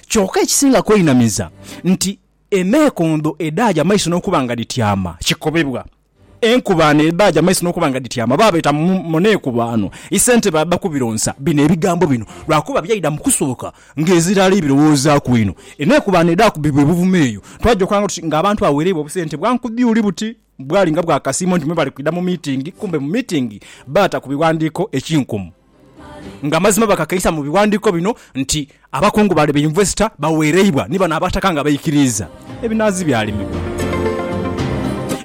Kyoka ekisinga kweinamiza nti enhekondo edhaaja amaiso n'okuba nga dhityama kikobebwa. Enkubaano edhaaja amaiso n'okuba nga dhityama baabeeta mu neekubaano. Isentebe adha kubironsa bino ebigambo bino lwakuba byaidha mu kusooka ng'ezira ali birowoozaaku inho. Enheekubaano edhaakubibwa e Buvuma eyo, twajookanga tuti ng'abantu bagheereibwa obusente bwa nkudhi uli buti. Bwali nga bwakasiimo nti me bali kwidha mu miitingi, kumbe mu miitingi baata ku bighandiiko ekinkumu. Nga mazima bakakeisa mu bighandiiko bino nti abakungu bale be yunivesita bawereibwa ni bano abataka nga baikiriiza ebinanzi byalimibwa.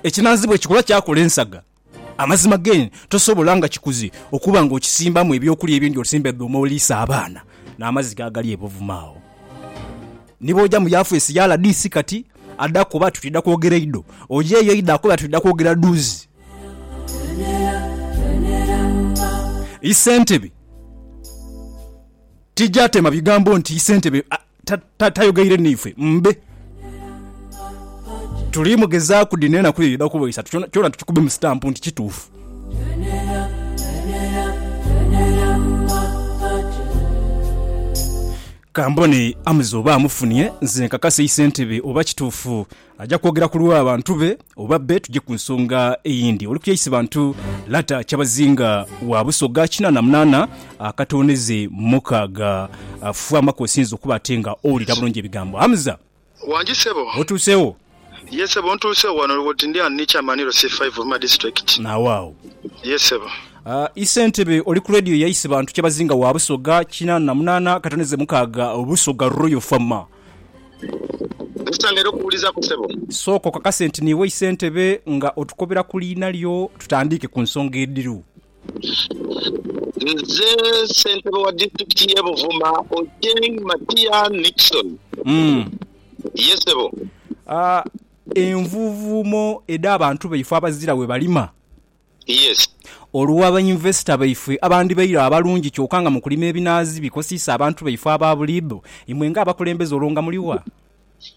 Ekinanzi bwekikula kyakola ensaga. Amazima gen tosobola nga kikuze okuba nga okisimbamu ebyokulya ebindi osimba edhuuma oliisa abaana n'amazzi gaagali e Buvuma agho. Ni bwoja mu yafeesi ya rdc kati, Ada kuba ati twidha kwogera einho. Oyo eyo eidha kuba ati twidha kwogera dhuuzi. Isentebe tija tema bigambo nti isentebe tayogeire naife mbe. Tuli mugezaaku dhino enaku dhidha kuba isatu kyona kyona tukikubemu sitampu nti kituufu. Ka mbone Amza oba amufunye nze nkakase Isentebe oba kituufu aja kwogera ku lwa bantu be oba bbe tuje ku nsonga eyindi. Oli kuya Isibantu Lata Kyabazinga wa Busoga kinaana munaana akatooneze mukaaga. Fwamaku osinze okuba ate nga owulira bulungi ebigambo. Amza. Wangi sebo. Otuuse wo? Yee sebo ntuuse wo wano woti ndi ghano ni chairman iro si five of my district. Nawo agho. Yee sebo. Ii Ssentebe oli ku Radio ya Isibantu Kyabazinga wa Busoga kinaana na munaana katoneze mukaaga Busoga Royal Fama. Tusangaire okuwulizaku sebo. Sooka okakase nti niiwe Isentebe nga otukobera ku liina lyo tutandiike ku nsonga edhiru. Nze ssentebe wa disitulikiti y'e Buvuma, Ochieng Matia Nickson. Ye ssebo. Envuuvuumo edh'abantu baife abazira we balima. Yes. Olwa bainvesita baife abandhibaire abalungi kyoka nga mu kulima ebinaazi bikosiisa abantu baife aba buliidho, imwe ng'abakulembeze olwo nga muli wa?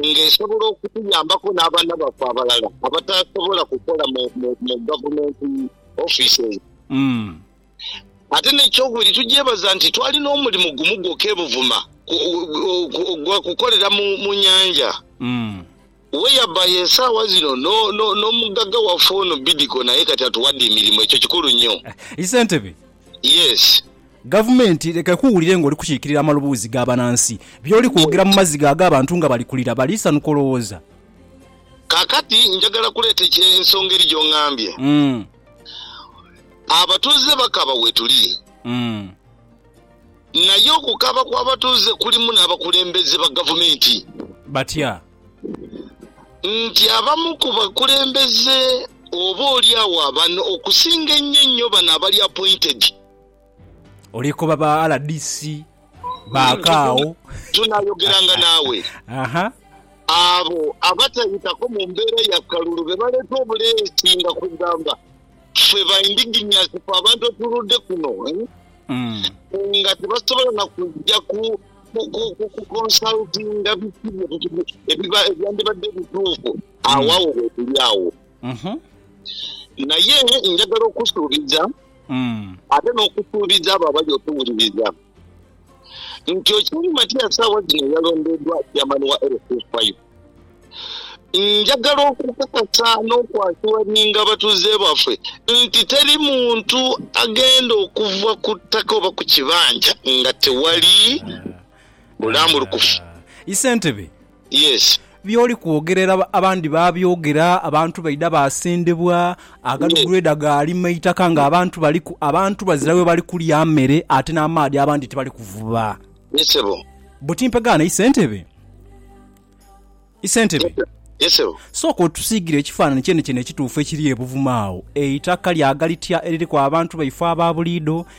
nga esobola okutuyambaku n'abaana baffe abalala abatasobola kukola mu mu gavumenti ofiisi eyo. Ate n'ekyokubiri tugyebaza nti twali n'omulimu gumu gwokka e Buvuma gwa kukolera mu mu nyanja whereby esaawa zino n'omugagga waffe ono Bidco naye kati atuwadde emirimu. Ekyo kikulu nnyo. Ssentebe. Yes. Gavumenti leka ekuwulire ng'oli kukiikirira amaloboozi ga banansi. By'oli kwogera mu maziga ag'abantu nga bali kulira, baliisanuka olowooza. Kaakati njagala kuleeta ensonga eri gy'ongambye. Abatuuze bakaaba wetuli. Naye okukaaba kw'abatuuze kulimu n'abakulembeze ba gavumenti. Batya? Nti abamu ku bakulembeze oba oli agho abano okusinga ennyo ennyo bano abali appointed. Oli koba ba RDC ba kaagho. Tunayogeranga naawe. Abo abatayitako mu mbeera ya kalulu be baleeta obuleesi nga kugamba ffe ba indigenous ffe abantu otuludde kuno nga tebasobola na kujja ku consultinga biki ebyandibadde ebituufu. Agho agho wetuli agho. Naye njagala okusuubiza. ate n'okusuubiza abo abali okuwuliriza nti okiri Matiya saawa zino eyalondeedwa Chairman wa LC5. Njagala okukakasa n'okwasuwaninga abatuuze baffe nti teri muntu agenda okuva ku ttaka oba ku kibanja nga tewali bulambulukufu. Ssentebe Yes. By'oli kwogerera abandi baabyogera, abantu baidha baasendebwa, agadugreeda gaalima eitaka ng'abantu baliku. Abantu bazira we bali kulya mere ate n'amaadhi abandi tibali kuvuba. Ye ssebo. Buti mpegaana Isentebe? Isentebe? Ye ssebo. Sooka otusiigire ekifaananyi kyenekyene ekituufu ekiri e Buvuma agho. Eitaka lyaaga litya eririku abantu baife aba buliidho,